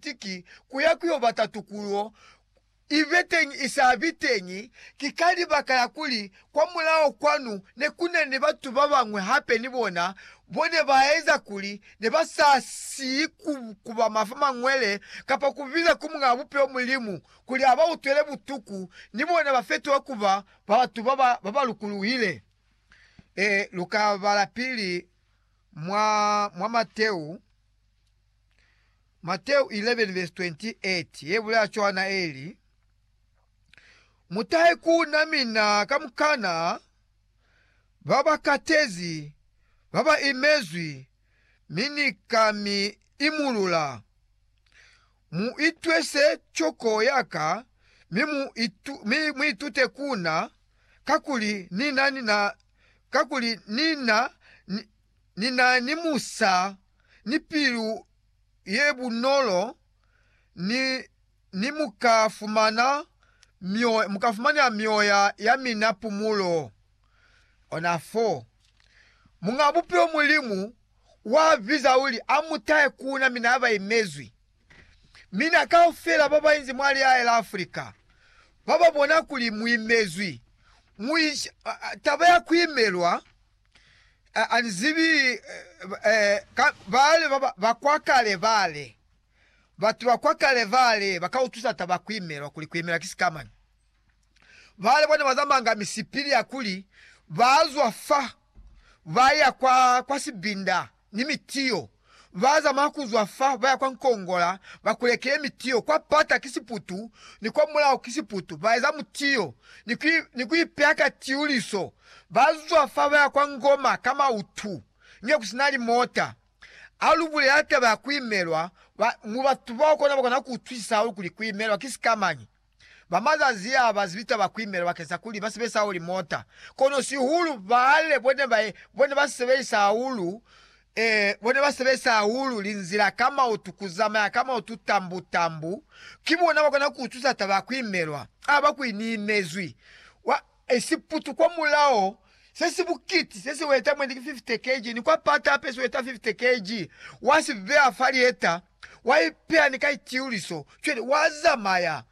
Baltiki ku ya ku yo bata tukulo i be teñi i sa bi teñi, ki ka libaka la kuli kwamulaho kwanu ne ku na ni batu ba bañwi hape ni bona bo ne ba eza kuli ne ba sa si ku kuba mafa mañwele kapa ku biza ku Muñaa Bupilo Mulimu kuli a ba utwele butuku, ni bona ba fetuha ku ba batu ba ba lukuluhile. Ee, lu ka bala pili mwa, mwa Mateu. Mateu 11 vesi 28 ye bulaya cwana ye li, Mutahe ku na mina kamukana ba ba katezi, ba ba imezwi, mi Ni ka mi imulula. Mu itwese coko ya ka, mi mu, itu, mi mu itute ku na, kakuli Ni na, ni na, kakuli Ni na, ni, ni na ni musa ni pilu ye bunolo ni, ni mu ka fumana mioya, mu ka fumanela mioya ya mina pumulo. Ona fo. Muñaa Bupilo Mulimu wa biza uli a mu tahe ku na mina ba imezwi. Mina kaufela ba ba inzi mwa lihae la Afrika, ba ba bona kuli mu imezwi, mu inshi, taba ya ku imelwa, A, a ni zibi, eh, ka, bale ba, ba, ba kwa kale bale, batu ba kwa kale bale ba ka utwisa taba kuimelwa, kuli kuimela ki sikamani. Bale bona ba zamanga misipili ya kuli ba zwa fa, ba ya kwa, kwa sibinda ni mitiyo. Ba zamaya ku zwa fa ba ya kwa Nkongola, ba kulekile mitiyo. Kwa pata ki siputu, ni kwa mulaho ki siputu. Ba eza mutiyo ni ku ipeha ka tiuliso. Ba zwa fa ba ya kwa Ngoma ka mautu, nge ku si na limota. Ha lu bulela taba ya ku imelwa, mu batu bao kono ba kona ku utwisisa hahulu kuli ku imelwa ki sikamañi. ba mazazi a ba zibita ba kuimela bakesa kuli ba sebelisa hahulu limota, kono sihulu baale bone ba bone ba sebelisa hahulu e bone ba sebelisa hahulu linzila ka mautu, ku zamaya ka mautu tambu tambu. Ki bona ba kona ku utusa taba ya kuimelwa ha ba kuini imezwi. e siputu kwa mulao se si bukiti se si weta mwendi ki 50 kg, ni kwa pata hape si weta 50 kg, wa si beya fa lieta, wa ipeya ni ka itiuliso, cwale wa zamaya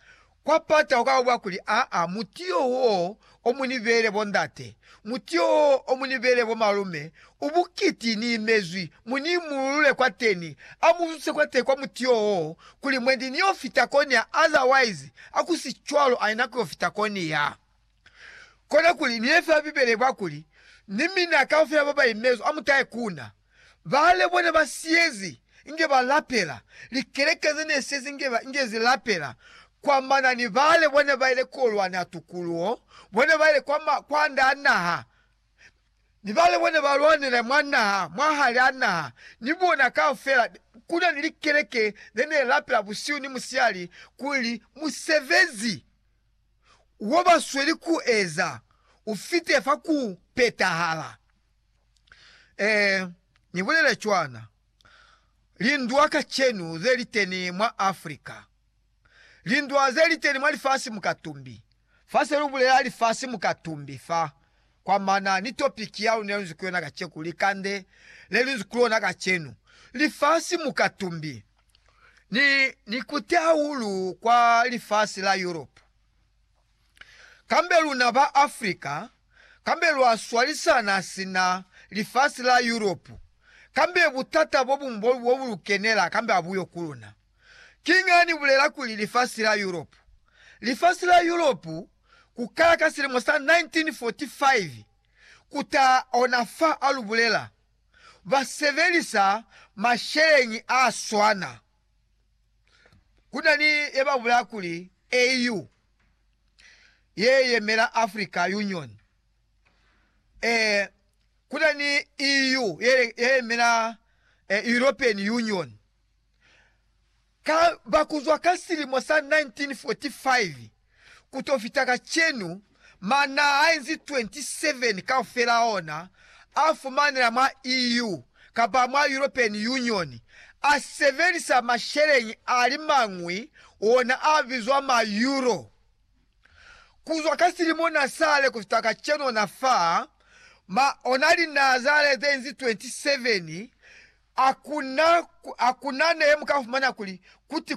kwa pata ukaba bwa kuli, Aa, muti yo wo o mu ni beele bondate, muti yo wo o mu ni beele bomalume, Ubukiti ni imezwi, mu ni imululule kwateni, a mu zutise kwateni kwa muti yo wo, kuli mwendi ni yo fita koni ya, otherwise, a ku si cwalo, aina ku yo fita koni ya. Kona kuli, ni ye fela Bibele kwa kuli, Ni mina kaufela ba ba imezwi, a mu tahe ku Na. Baale bona ba siyezi, inge ba lapela, likeleke ze ne siyezi inge ba, inge zi lapela, kwa manani, baale bona ba ile ku yo lwana tukuluho, bona ba ile kwa ma, kwa nda naha, ni bale bona ba lwanela mwa naha, mwa hali a naha, ni bona kaufela, ku na ni likeleke ze ne lapela busihu ni musihali kuli musebezi wo ba sweli ku eza u fite fa ku petahala. Ee, ni bulele cwana. Lindwa kacenu ze li teni mwa Africa. Lindwa ze li teni mwa lifasi mukatumbi. Fa se lu bulela lifasi mukatumbi fa, kwa mana ni topiki ya luna ye lu nzi ku yona kaceku, likande le lu nzi ku lona kacenu, Lifasi Mukatumbi. Ni, ni kute hahulu kwa lifasi la Yurope. Kambe luna ba Afrika, kambe lwa swalisana sina lifasi la Yurope, kambe butata bo buñwi bo, bo bu lu kenela, kambe ha bu yo ku luna. Kiñi ha ni bulela kuli lifasi la Yuropu? Lifasi la Yuropu, ku kala ka silimo sa 1945 ku ta ona fa a lu bulela, ba sebelisa masheleñi a swana. Ku na ni ye ba bulela kuli AU, ye yemela Africa Union. Ee, ku na ni EU, ye yemela European Union. Ka ba kuzwa ka silimo sa 1945 ku to fita kacenu, ma na enzi 27 kaufela ona a fumanela mwa EU kapa mwa European Union, a sebelisa masheleñi a li mañwi ona a bizwa ma Euro. Kuzwa ka silimo na sale kufita kacenu na fa ma ona linazale zenzi 27, akuna, akuna nehe mukafumana kuli kuti